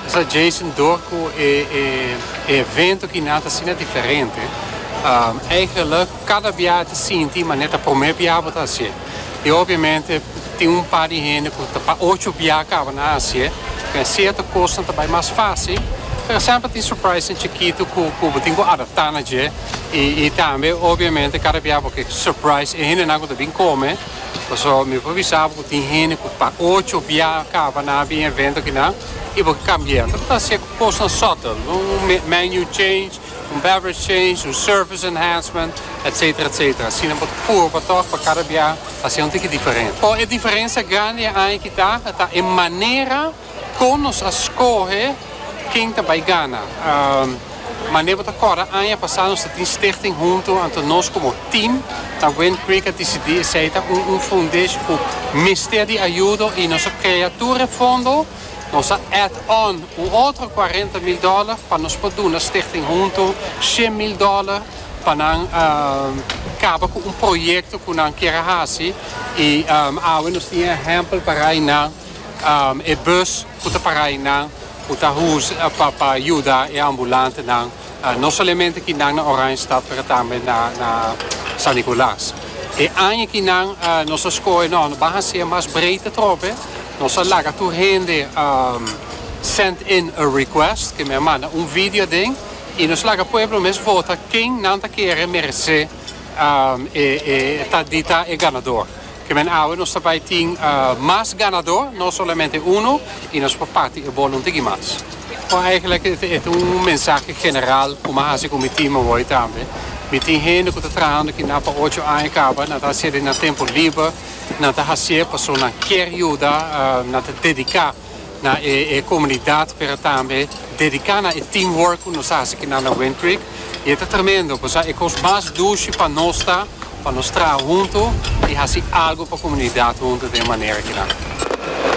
Sa Jason dor cu e evento ki nan ta asina diferente eigenlik cada bia ta sinti man e ta prome bia bo ta hacié y obviamente tin un par di hende cu ta pa ocho bia caba nan hacié den cierto cosnan ta bay mas facil por ejemplo tin surprisenan chikito cu bo tin cu adapta na dje y tambe obviamente cada bia bo ke surprise e hende nan cu ta bin come. Pasobra mi por bisa bo ku tin hende ku pa ocho bia kaba nan a bin e evento akinan i bo ke kambia. Lo ta hasié ku kosnan sòtel, un menu change, un beverage change, un service enhancement, etsetera, etsetera. Asina bo ta purba tòg pa kada bia hasié un tiki diferente. Pero e diferensia grandi e aña aki ta, ta e manera. Kon nos a skohe ken ta bai gana? Mane bo ta kòrda aña pasá nos ta tin stichting huntu, anto nos komo tim na Wind Creek a disidí esei ta un un fundish ku mester di ayudo i nos a krea tur e fondo, nos a add on un otro kuarenta mil dòler pa nos por duna stichting huntu shen mil dòler pa nan kaba ku un proyekto ku nan kier a hasi i awe nos tin e ehèmpel parai na. e bus cu ta para aynan cu ta pa yuda e ambulantenan no solamente kinan na Oranjestad pero tambe na San Nicolaas. E aña kinan nos a scoge no no ban hacer mas breed atrobe nos a laga tur hende send in a request ke men a manda un video aden y nos laga pueblo mes vota ken nan ta kere merece ta di ta e ganador. Kimen awe nos ta bai tin mas ganadó, no solamente uno, y nos por parti e bolo un tiki mas. Bo eigenlijk e ta un mensahe general kuma hasi ku mi tin mooi tambe. Mi tin hende ku ta trahando kina pa ocho aña kaba, nan ta hacié den nan tempo liber, nan ta hacié pasobra nan kier yuda, nan ta dediká. na e e comunidad pero tambe dedica na e team work cu nos haci aquí na Wind Creek y e ta tremendo cosa e cos mas dushi pa nos ta pa nos traha hunto y haci algo pa comunidad hunto den e manera aki nan.